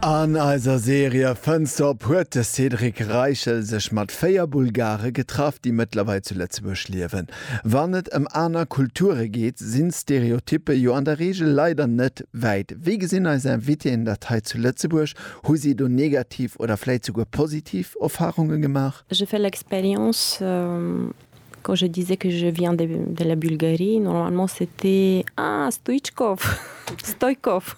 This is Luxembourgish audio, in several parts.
An eiser Serie Fënns de op huet de Cédric Reichel sech mat véier Bulgare getraff, déi mëttlerweil zu Lëtzebuerg liewen. Wann et ëm aner Kulture geet, sinn d'Stereotyppe jo an der Reegel leider net wäit. Wéi gesinn eis Invitéen dat hei zu Lëtzebuerg? Hu si do negativ oder vläicht souguer positiv Erfarunge gemaach? J'ai fait l'expérience quand je disais que je viens de la Bulgarie, normalement c'était Ah, Stoichkov, Stoikov.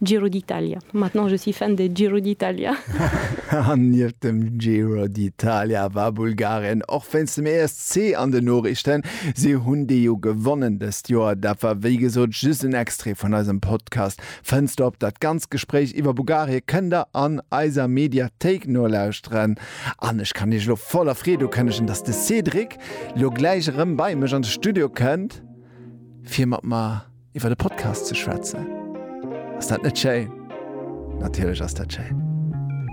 Giro d'Italia, maintenant je suis fan de Giro d'Italia. An nieft dem Giro d'Italia war Bulgarien och wéinst dem ESC an den Noriichten. Si hunn dee jo gewonnen dëst Joer. Dat war wéi gesot just en Extrait vun eisem Podcast Fënsterop. Dat ganzt Gespréich iwwer Bulgarie kënnt der an eiser Mediathéik nolauschteren. An ech kann iech elo voller Freed ukënnegen, dass de Cédric lo gläich erëm bei mech an de Studio kënnt fir mat mer. iwwer de Podcast ze schwätzen. Ass dat net schéin? Natierlech ass dat schéin.